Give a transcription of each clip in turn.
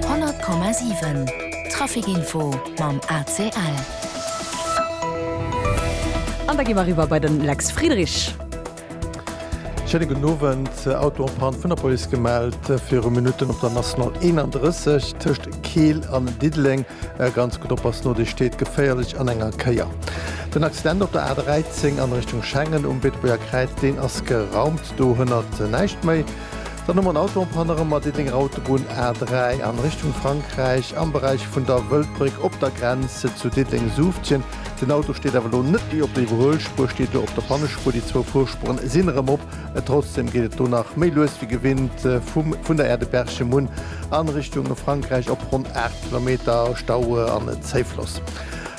100,7 Trafic Info mam ACL. An da gi mer eriwwer bei den Lex Friedrich. Schéine gudden Owend. Autopann vun der Police gemellt viru Minutten op der National 31 tëscht Keel an Diddeleng. Ganz gutt oppassen, no déi steet geféierlech an enger Kéier. Den Accident op der A 13 an Richtung Schengen um Beetebuerger Kräiz, deen ass geraumt. Do hënnert näischt méi. Dann hu mer en Auto en panne erëm mat Diddenger Autobunn A3 an Richtung Frankräich am Beräich vun der Wëldbréck op der Grenz zu Diddeng-Suuftjen. Den Auto steet awer elo net déi op der Iwwerhuelspuer, steet do op der Pannespuer. Déi zwou Fuerspueren sinn erëm op. Trotzdem geet et do nach méi lues wéi gewinnt vum vun der Aire de Berchemun an Richtung Frankräich op ronn 8 Kilometer Stau an Zéifloss.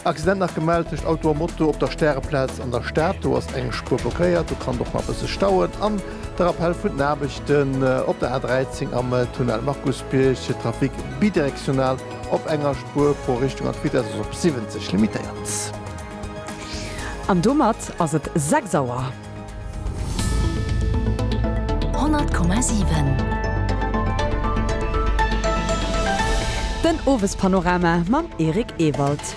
Accident nach gemellt tëscht Auto a Moto op der Stäreplaz an der Stad. Do ass eng Spuer blockéiert, do kann et och nach e bësse stauen an. De Rappell vun den Aarbechten op der A13 am Tunnel Markusbierg, de Trafic bidirektional op enger Spuer pro Richtung an d'Vitess ass op 70 limitéiert. An domat ass et 6 Auer. 100,7. Den Owespanorama mam Eric Ewald.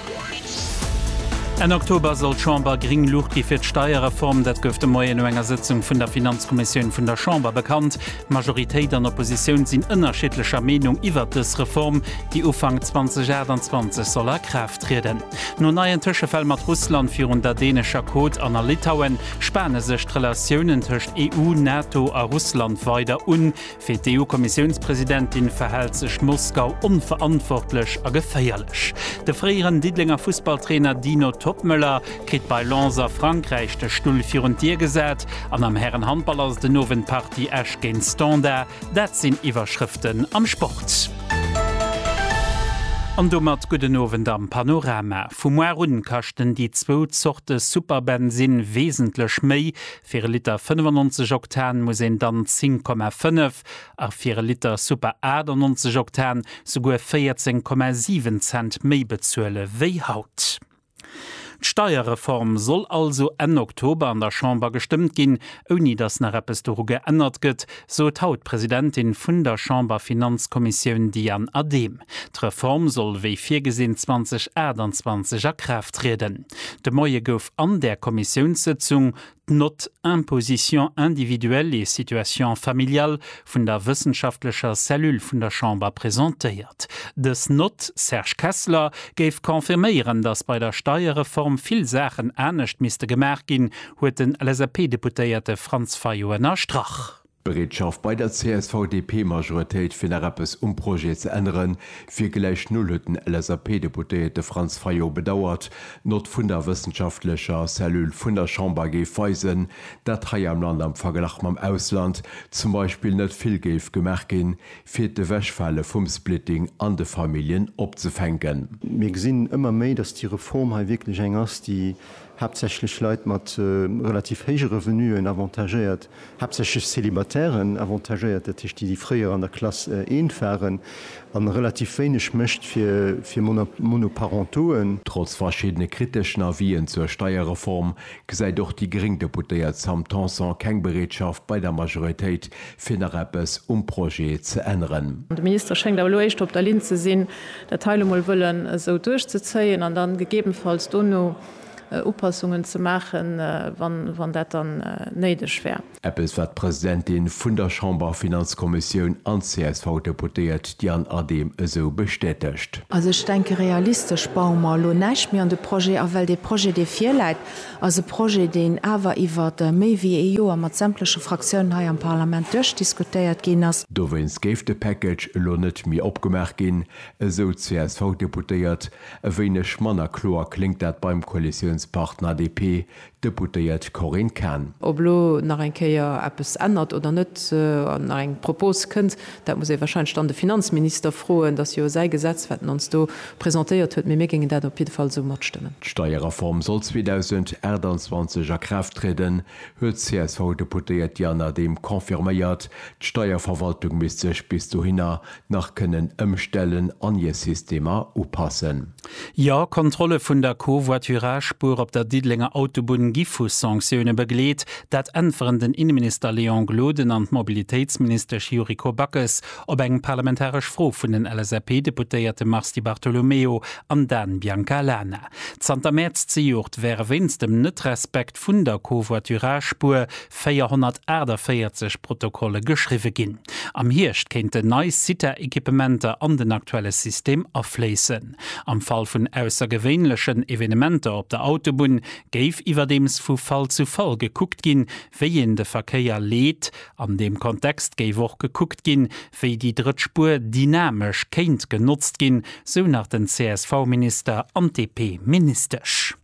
Enn Oktober soll d'Chamber gring Luucht gi fir d'Steierreform. Dat gouf de Moien no enger Sëtzung vun der Finanzkommissioun vun der Chamber bekannt. Majoritéit an Oppositioun sinn ënnerschiddlecher Meenung iwwert dës Reform, déi Ufank 2028 soll a Kraaft trieden. No neien Tëschefäll mat Russland virun der dänescher Côte an a Litauen spane sech d'Relatiounen tëscht EU, NATO a Russland weider un. Fir d'EU-Kommissiounspresidentin verhält sech Moskau onverantwortlech a geféierlech. De fréieren Diddelenger Fussballtrainer Dino Toppmöller kritt bei Lens a Frankräich de Stull virun d'Dier gesat an am Härenhandball ass et den Owend d'Partie Esch géint Standard. Dat sinn Iwwerschrëften am Sport. An domat gudden Owend am Panorama. Vu muar un kaschten déi zwou Zorte Superbensinn wesentlech méi, Fir e Liter 95 Oktan muss een dann 10,5 a fir e Liter Super 98 Oktan souguer 14,7 Cent méi bezuele wéi haut. D'Steierreform soll also Enn Oktober an der Chamber gestëmmt ginn, ouni datt nach eppes doru geännert gëtt, sot haut d'Presidentin vun der Chamberfinanzkommissioun Diane Adehm. D'Reform soll wéi virgesinn 2028 a Kraaft trieden. De Moie gouf an där Kommissiounssëtzung d'Note Imposition individuelle et situation familiale vun der wëssenschaftlecher Cellule vun der Chamber presentéiert. Dës Note, Serge Kessler, géif confirméieren, datt bei der Steierreform vill Saachen anescht misste gemaach ginn, huet den LSAP-Deputéierte Franz Fayot ënnerstrach. D'Bereetschaft bei der CSV-DP-Majoritéit fir nach eppes um Projet ze ännere wier gläich null, huet den LSAP-Deputéierte Franz Fayot bedauert. D'Nott vun der wëssenschaftlecher Cellule vun der Chamber géif weisen, dat hei am Land am Verglach mam Ausland zum Beispill net vill géif gemaach ginn, fir d'Ewechfale vum Splitting an de Familljen opzefänken. Mir gesinn ëmmer méi, datt déi Reform hei wierklech eng ass, déi haaptsächlech Leit mat relativ héije Revenuen avantagéiert, haaptsächlech Célibataires avantagéiert, dat heescht déi, déi fréier an der Klass eent waren, a relativ wéineg mécht fir Monoparentoen. Trotz verschiddene kriteschen Avisen zur Steierreform gesäit och déi gréng Deputéiert Sam Tanson keng Bereetschaft bei der Majoritéit fir nach eppes um Projet ze änneren. De Minister schéngt awer elo éischter op der Linn ze sinn, dat hei elo mol wëllen esou duerchzezéien an da gegebenfalls dono Upassungen ze maachen, wann dat dann néideg wär. Eppes, wat d'Presidentin vun der Chamberfinanzkommissioun an d'CSV-Deputéiert Diane Adehm esou bestätegt. Also ech denke, realistesch baue mer elo näischt méi an de Projet a, well dee Projet, dee virläit, ass e Projet, deen awer iwwer méi wéi ee Joer mat sämtleche Fraktiounen hei am Parlament duerchdiskutéiert ginn ass. Dowéinst géif de Package elo net méi opgemaach ginn, esou d'CSV-Deputéiert. E wéineg manner kloer kléngt dat beim Koalitiounspartner DP, d'Deputéiert Corinne Cahen. Ob elo nach eng Kéier eppes ännert oder net, an nach eng Propos kënnt, Dat muss ee wahrscheinlech dann de Finanzminister froen. Dat ass jo säi Gesetz, wat en ons do presentéiert huet. Mee mir géingen dat op jidde Fall esou matstëmmen. D'Steierreform soll 2028 a Kraaft trieden, huet d'CSV-Deputéiert Diana Dehm confirméiert. D'Steierverwaltung misst sech bis dohinner nach kënnen ëmstellen an hir Systemer upassen. Jo, Kontrolle vun der Covoiturage-Spuer op der Diddelenger Autobunn gi vu Sanktioune begleet. Dat äntweren den Inneminister Léon Gloden an d'Mobilitéitsministesch Yuriko Backes op eng parlamentaresch Fro vun den LSAP-Deputéierte Mars Di Bartolomeo an Dan Biancalana. Zanter Mäerz zejoert wäre wéinst dem Net-Respekt vun der Covoiturage-Spuer 448 Protokolle geschriwwe ginn. Am Hierscht kéinten nei Cita-Equipementer an den aktuelle System afléissen. Am Fall vun aussergewéinlechen Evenementer op der Autobunn géif iwwerdeems vu Fall zu Fall gekuckt ginn, wéi een de Verkéier leet. An deem Kontext géif och gekuckt ginn, wéi déi drëtt Spuer dynamesch kéint genotzt ginn, sou nach den CSV-Minister an d'DP-Ministesch.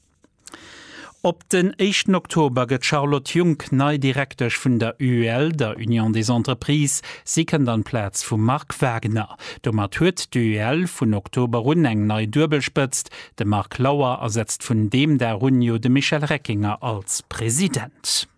Op den éischten Oktober gëtt d'Charlotte Junck nei Direktesch vun der UEL, der Union des Entreprises. Si kënnt an d'Plaz vum Marc Wagner. Domat huet d'UEL vun Oktober un eng nei Duebelspëtzt, de Marc Lauer ersetzt vun deem Dag un jo de Michel Reckinger als President.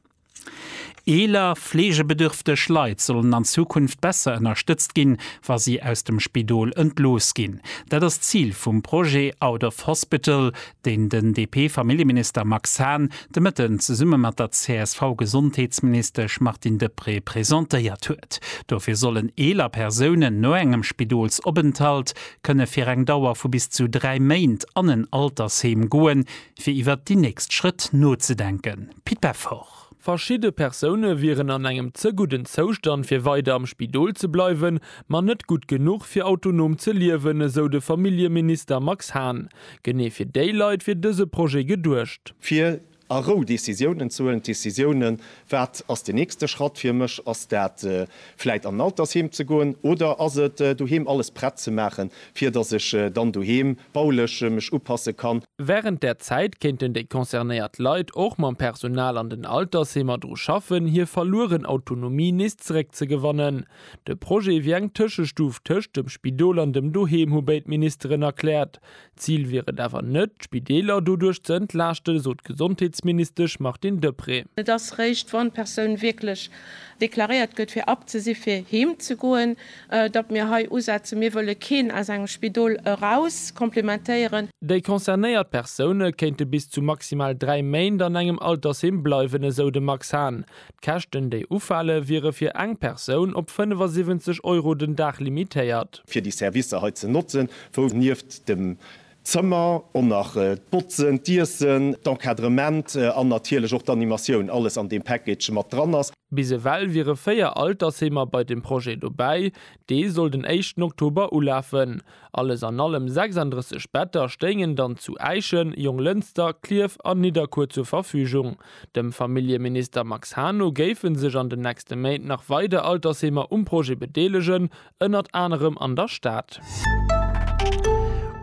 Eeler, fleegebedürfteg Leit sollen an Zukunft besser ënnerstëtzt ginn, wa si aus dem Spidol entlooss ginn. Dat ass d'Zil vum Projet Out of Hospital, deen den DP-Familljeminister Max Hahn de Mëtten zesumme mat der CSV-Gesondheetsministesch Martine Deprez presentéiert huet. Dofir sollen eeler Persounen no engem Spidolsopenthalt kënne fir eng Dauer vu bis zu dräi Méint an en Altersheem goen, fir iwwert déi nächst Schrëtt nozedenken. Pit Peffer. Verschidde Persoune wieren an engem ze gudden Zoustand fir weider am Spidol ze bleiwen, ma net gutt genuch fir autonom ze liewen, esou de Familljeminister Max Hahn. Genee fir déi Leit wier dëse Projet geduecht. Fir a Rou Decisiounen ze huelen, Decisiounen, wat ass den nächste Schratt fir mech? Ass dat vläit an en Altersheem ze goen oder ass et doheem alles prett ze maachen, fir datt ech dann doheem baulech mech upasse kann. Wärend där Zäit kéinten déi concernéiert Leit och mam Personal an den Altersheemer dru schaffen, hir verlueren Autonomie nees zeréckzegewannen. De Projet wier eng Tëschestuf tëscht dem Spidol an dem Doheem, hu béid Ministeren erkläert. D'Zil wier et awer net, d'Spideeler doduerch ze entlaaschten, sot d'Gesondheetsministesch Martine Deprez. Et ass réischt, wann d'Persoun wierklech deklaréiert gëtt, fir abzesi fir heem ze goen. datt mir hei usetzen, mir wëlle keen aus engem Spidol eraus komplementéieren. Déi concernéiert Persoune kéinte bis zu maximal dräi Méint an engem Altersheem bleiwen, esou de Max Hahn. D'Käschten, déi ufale wiere fir eng Persoun op 75 Euro den Dag limitéiert. fir déi Servicer hei ze notzen, wou nieft dem D'Zëmmer an nach d'Botzen, d'Iessen, d'Encadrement an natierlech och d'Animatioun, alles an deem Package mat dran ass. Bis ewell wiere 4 Altersheemer bei dem Projet dobäi, dee soll den éischten Oktober ulafen. Alles an allem 36 Better stéingen dann zu Äischen, Jonglënster, Klierf an Nidderkuer zur Verfügung. Dem Familljeminister Max Hahn no géife sech an den nächste Méint nach weider Altersheemer um Projet bedeelegen, ënnert anerem an der Stad.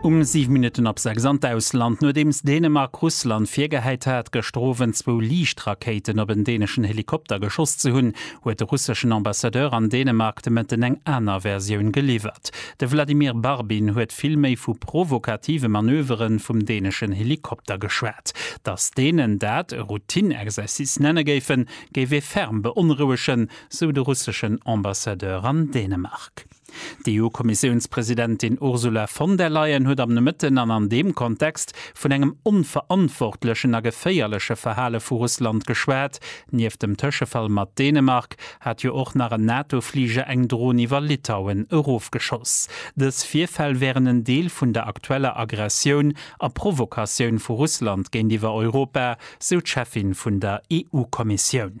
Um 7 Minutten ab 6 an d'Ausland, Nodeems Dänemark Russland virgehäit hat, gëschter Owend zwou Liichtrakéiten op en däneschen Helikopter geschoss ze hunn, huet de russeschen Ambassadeur an Dänemark de Mëtten eng aner Versioun geliwwert. De Vladimir Barbin huet vill méi vu provokative Manövere vum däneschen Helikopter geschwat. Datt Dänen dat e Routine-Exercice nenne géifen, géif ee ferm beonrouegen, sou de russeschen Ambassadeur an Dänemark. D'EU-Kommissiounspresidentin Ursula von der Leyen huet am Nomëtten an an deem Kontext vun engem onverantwortlechen a geféierleche Verhale vu Russland geschwat. Nieft dem Tëschefall mat Dänemark hat jo och nach en NATO-Fliger eng Dron iwwer Litauen erofgeschoss. Dës Virfäll wären en Deel vun der aktueller Aggressioun a Provokatioun vu Russland géintiwwer Europa, sou d'Cheffin vun der EU-Kommissioun.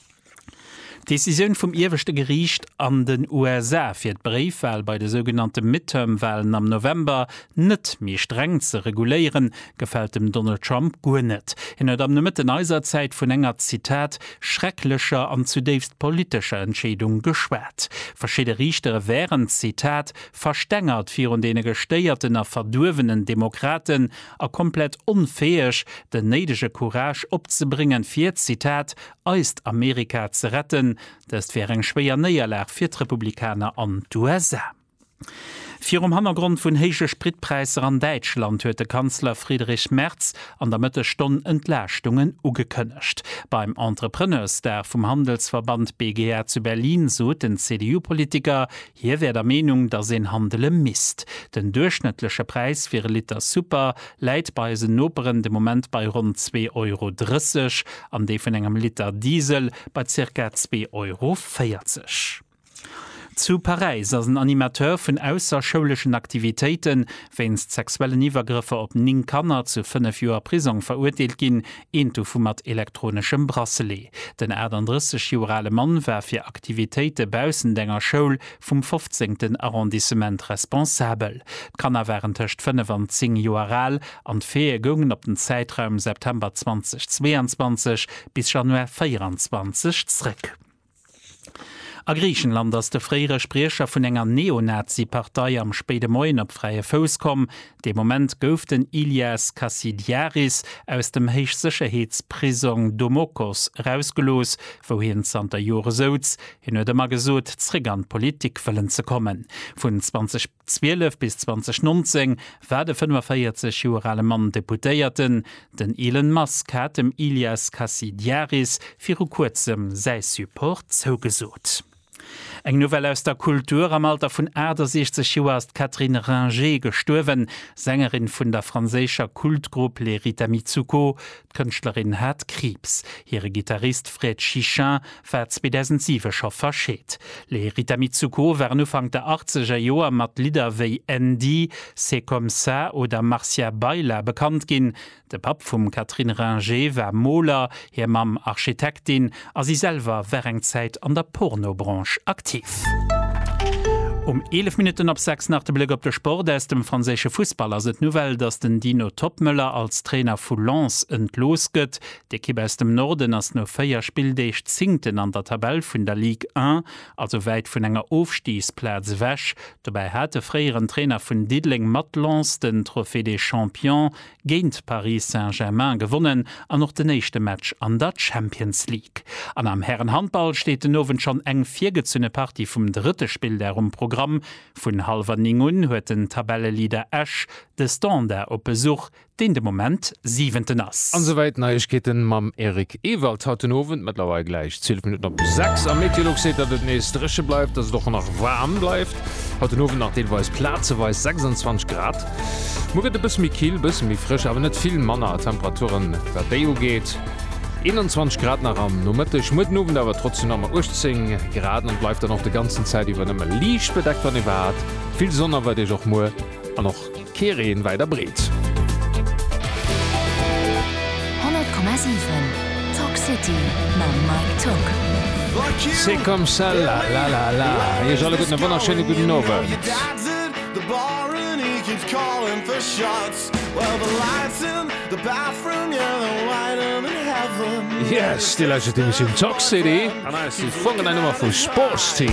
D'Decisioun vum ieweschte Geriicht an den USA, fir d'Bréifwal bei de sougenannte Midterm-Walen am November net méi streng ze reguléieren, gefält dem Donald Trump guer net. Hien huet am Nomëtten eiser Zäit vun enger, Zitat, schrecklecher an zudéifst politescher Entscheedung geschwat. Verschidde Riichtere wären, Zitat, verstengert virun deene gestéierten a verduerwenen Demokraten a komplett onfäeg, den néidege Courage opzebréngen, fir, Zitat, eist Amerika ze retten. Dëst wär eng schwéier Néierlag fir d'Republikaner an d'USA. Virum Hannergrond vun héije Spritpräisser an Däitschland huet de Kanzler Friedrich Merz an der Mëttesstonn Entlaaschtungen ugekënnegt. Beim Entrepreneursdag vum Handelsverband BGA zu Berlin sot den CDU-Politiker, Hie wär der Meenung, datt een handele misst. Den duerchschnëttleche Präis fir e Liter Super läit bei eisen Noperen de Moment bei ronn zwee Euro 30 an dee vun engem Liter Diesel bei zirka zwee Euro 40. Zu Paräis ass en Animateur vun ausserschouleschen Aktivitéite wéinst sexuellen Iwwergrëffer op 9 Kanner zu 5 Joer Prisong verurteelt ginn, Een dovu mat elektroneschem Bracelet. Den 38 Joer ale Mann war fir Aktivitéite baussent enger Schoul vum fofzéngten Arrondissement responsabel. D'Kanner waren tëscht fënnef an zéng Joer al an d'Faite goungen op den Zäitraum September 2022 bis Januar 24 zréck. A Griichenland ass de fréiere Spriecher vun enger Neonazi-Partei am spéide Moien op fräie Fouss komm. Dee Moment gouf den Ilias Kassidiaris aus dem Héichsécherheetsprisong Domokos erausgelooss, wou hien zanter Jore souz. Hien huet ëmmer gesot, zeréck an d'Politik wëllen ze kommen. Vun 20. 12 bis 2019 war de 45 Joer ale Mann Deputéierten. Den Elon Musk hat dem Ilias Kasidiaris viru kuerzem säi Support zougesot. Eng Nouvelle aus der Kultur, Am Alter vun 68 Joer ass d'Catherine Ringer gestuerwen, Sängerin vun der franséischer Kultgrupp Les Rita Mitsouko. D'Kënschtlerin hat Kriibs. Hire Gittarist Fred Chichin war 2007 scho verscheet. Les Rita Mitsouko waren Ufank der achtzeger Joer mat Lidder wéi Andy, C'est comme ça oder Marcia Baila bekannt ginn. De Papp vum Catherine Ringer war Moler, hir Mamm Architektin a si selwer war eng Zäit an der Porno-Branche aktiv. Um 11 Minutten op 6 nach de Bléck op de Sport. Aus dem franséische Fussball ass et d'Nouvelle, dass den Dino Toppmöller als Trainer vu Lens entlooss gëtt. D'Ekipp aus dem Norden ass no 4 Spilldeeg Zéngten an der Tabell vun der Ligue 1, also wäit vun enger Ofstigsplaz ewech. Dobäi hat de fréieren Trainer vun Diddeleng mat Lens den Trophée des Champions géint Paris Saint-Germain gewonnen an och den éischte Match an der Champions League. An am Härenhandball steet den Owend schonn eng virgezunne Partie vum drëtte Spilldag um Programm. Vun hallwer 9 un huet den Tabelleleader Esch de Standard op Besuch. deen de Moment Siwenten ass. An souwäit Neiegkeeten mam Eric Ewald haut den Owend. Mëttlerweil gläich 12 Minutten op 6 a Meteolux seet, datt et nees dréche bleift, datt et och nach waarm bleift. Haut den Owend nach deelweis plazeweis 26 Grad. Muer gëtt e bësse méi kill, bësse méi frësch, awer net vill manner a Temperaturen, wat déi ugeet, 21 Grad nach am Nomëtteg. Muer den Owend awer trotzdem nach mol 18 Grad an et bleift dann och de ganzen Zäit iwwer nëmme liicht bedeckt, wann iwwerhaapt. Vill Sonn erwaart Iech och muer an och. Kee Reen wäit a breet. 100,7 Talk City mam Mike Togg. C'est comme ça la la la la Iech alleguerten e wonnerschéine gudden Owend. Yes, déi lescht Emissioun Talk City an eis si fonkelnei Nummer vu Sportsteam.